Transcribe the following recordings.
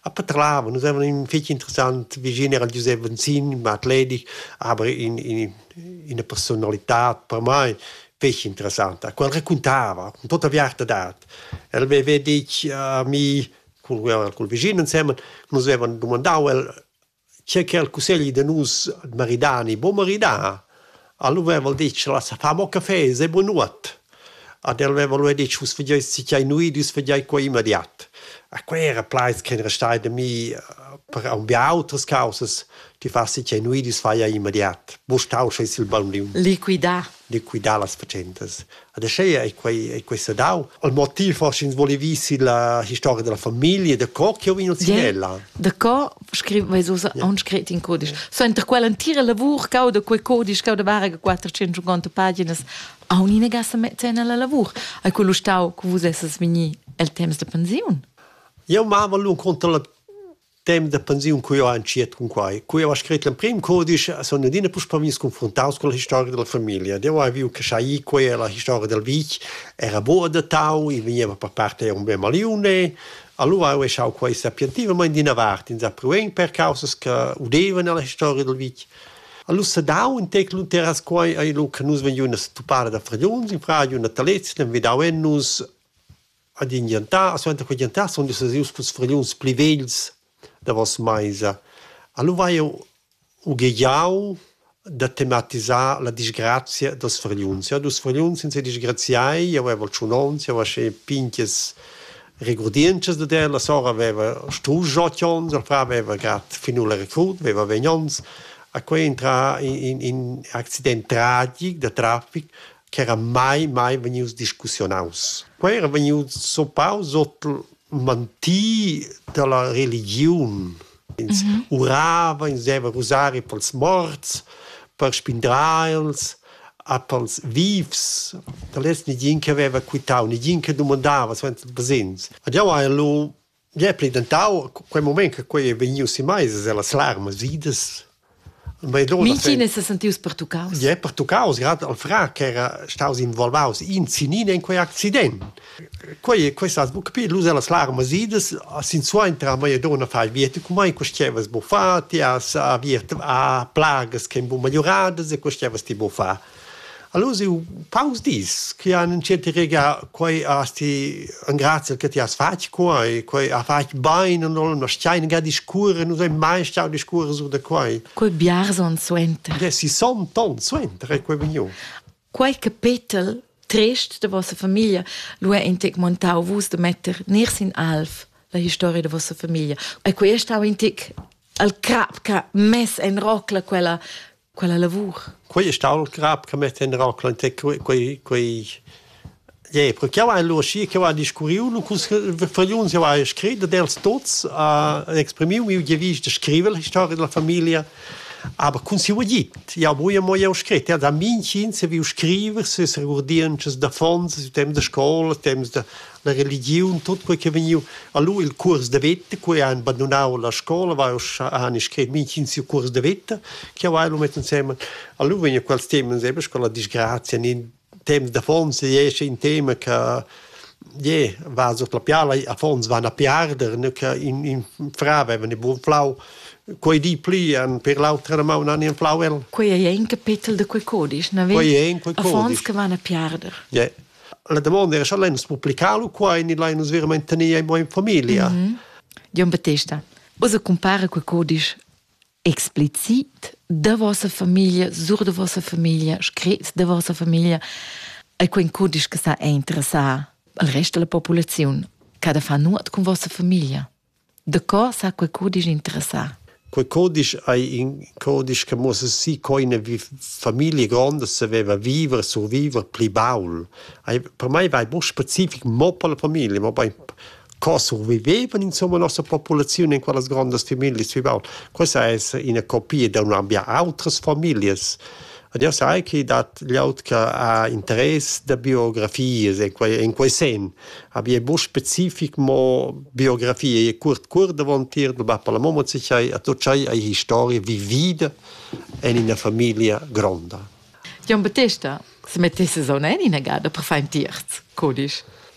A Patrava nus evan ün fich interessant vischin, era Giusep Venzin, ün mat ledig, aber in in ina personalità per mai fich interessanta. Quel raquintava con tuotta aviarta dad. El aveva ditg a mi cul cul vischin insemen, nus avevan dumandau el Schi che al cussegli da nus maridà ni buc maridà, alura veva el detg lassa far mo café, sei bunuot. Ad el veva lu detg vus fageis sinquei nuit, vus fageis quei immediat. E quei era plaids ch'ein restai da mi per aunc autras caussas. Ti fas sinquei nuit, vus fai immediat. Buc stau sche il bambiun. Liquidar liquidar las fatschentas. Ed aschia ei quei, ei quei sedau. Il motiv forse ins volevi sil la historia della famiglia, da co che ho vino ella. Da co scriv mai so on scrit in codisch. So inter quella entira lavur cau da quei codisch cau da varga 450 paginas a unina gassa mettena la lavur. Hai quello stau cu vus esses vegni el temps de pensiun? Eu mava lun contra la temps da pensiun cu io entschiet cun quai. Cu io ha scrit l'emprim codice sun adina puspè vegnis confruntaus con la historia della famiglia. Io hai viu che sai quei e la historia del vitg era buca adattau, i vegneva per part eir un bel maliune. Allura ho echau quai sapientivamaing d'ina vart, insapruvend per causas che udevan alla historia del vitg. Alura s'ha dau ün tec lur terras quai, eir lu che nus vegniun a se tuppar da fragliuns in fradiu, natalets, l'han vedau en nus ad in gentar, suenter quei gentar sun nus ius culs fragliuns pli vegls davos meisa. Allo vai jeu ughegiau da tematisar la disgrazia dels fragliuns. Ja, dus fragliuns in se disgraziai, jeu avevo tschun ons, jeu aschi pinches regurdientschas dad el, la sora aveva strusch ot ons, il fra aveva grad finù la recrut, aveva vegn ons. A quei entra in, in, in accident tragic da traffic ch'era mai mai vegnius discussiunaus. Quei era vegnius zoppaus ord manti dalla religiun. Ins mm -hmm. urava, ins deva rusari pels morts, per spindrar els, a pels vivs. Da lez negin che haveva quitau, negin che domandava suenter il basegns. Ed jau hai lu Gie pli dentau quei mument che quei ei vegnius in meis e las larmas idas. Mintgin se sentius pertuccaus. Ie, pertuccaus, grad al fra che era staus involvaus in sinin in quei accident. Quei quei sa buc più lus las larmas idas, sin suenter a mia donna fai viet cu mai quest'evas bu fa, ti has aviert a plagas che bu miglioradas e quest'evas ti bu fa. Allura siu paus dis chi han entschet i regà quai has ti ingrazia che ti has fatg quai, quai ha fatg bain a nus, nus schain ga discurrer, nus hain mai stau discurrer sur da quai. Quei biars onns suenter. Dessi somt onns suenter è quei vegniu. Quei capetel trist de vossa famiglia lu è intec montau vus de metter ner sin alf la historia de vossa famiglia. E quei è stau intec al crap ca mess en rocla quella quella lavur. Quei è stau il crap che mi tenderà quante quei quei Ja, perché io ein loschi che va discuriu nu cus vergliuns io hai scrit dels tots a exprimiu mi je vis de scriver la storia della famiglia aber kun si ugit ja boje mo je scrit ja da min chin se vi scriver se se gurdienches da fonds dem de scola dem de la religiun, tot quei che vegniu. Allora il cuors de veta, quei ha abbandonau la scola, va ussa ha scrit mintgin siu cuors de veta, che vai lo met insemen. Allora vegna quels temas sempre con la disgrazia, in tema de fons esce in tema che je va so la piala a fons van a piarder ne che in in fra avevano il buon flau quei di pli an per l'altra ma un anni flau el quei è un capitel de quei codice na quei è in quei codice che van a piarder yeah. La damonda era, scha l'hai nus publicalu qua e ni l'hai nus verament tenia in mo in familia? Mm -hmm. Jon Battesta, osa compara quel codisch explicit da vossa famiglia, sur de vossa famiglia, scrit de vossa famiglia, e quel codisch che sa interessar al resto della popolazione, cada fa nuot con vossa famiglia? Da co sa quei cudisch interessar? Quei cudisch ei in cudisch che muossa si co ina famiglia gronda saveva viver, surviver pli baul. Per mei vai mo specific mo per la famiglia, mo bein co survivevan insomma la nossa populaziun in quellas grandas familias vi baul. Questa è ina copia da un'ambia autras familias. Ed jau sai che dat glieud che ha interess da biografias en quei, en quei sen. Aber è buc specific, mo biografie è curt cur davontier, du va per la momma sichai, a tut schai hai historie vivida en ina famiglia gronda. Jon Battesta, se mettisses on en ina gada per far in tierz, codisch.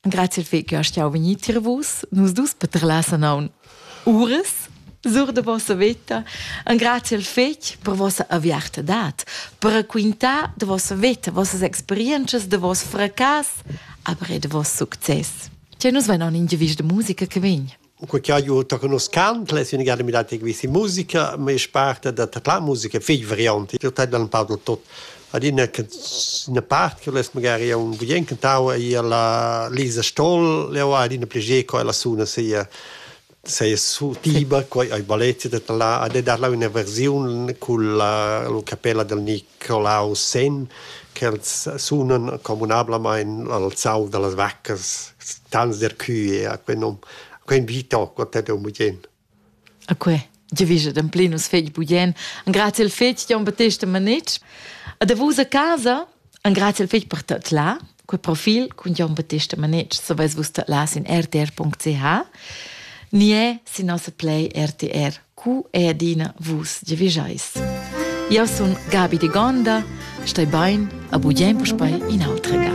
Grazie fi che stiau vegnir tier vus. Nus dus petrelassen aun ures sur de vossa veta en grazie al fetg per vossa aviartadad, per raquintar de vossa veta, vossas experiences, de vos fracas, aber e de vos succes. Che nus venon in gevis de musica che vegn. u que cha eu to conoschant l'es üna gada mirà tar quista musica, ma i's parta da tadlà musica fich variante. Eu tadlan un pau da tot. Adina che üna part che l'es magari un gudiench cantau eir la Lisa Stoll, eu ha adina piager co ella suna sia seia tiba, quai ai balletti da tadlà, ad e darla üna versiun culla capella dal Nic colau sen ch'els sunan communablamain al zau da las vaccas, stans d'Ercue, a quel nom, a quel vita ho contet eu bugen. A que giavischa d'amplir nus fegl bugen, engrazi al fegl Jon Battesta Manetsch. A davos a casa, engrazi al fegl per tot là, Quel profil cun Jon Battista Manetsch saveis vus las in rtr.ch ni è sin nossa play RTR cu è adina vus giavischais. Io sun Gabi de Gonda, stai bain, a bugen puspei in altra ga.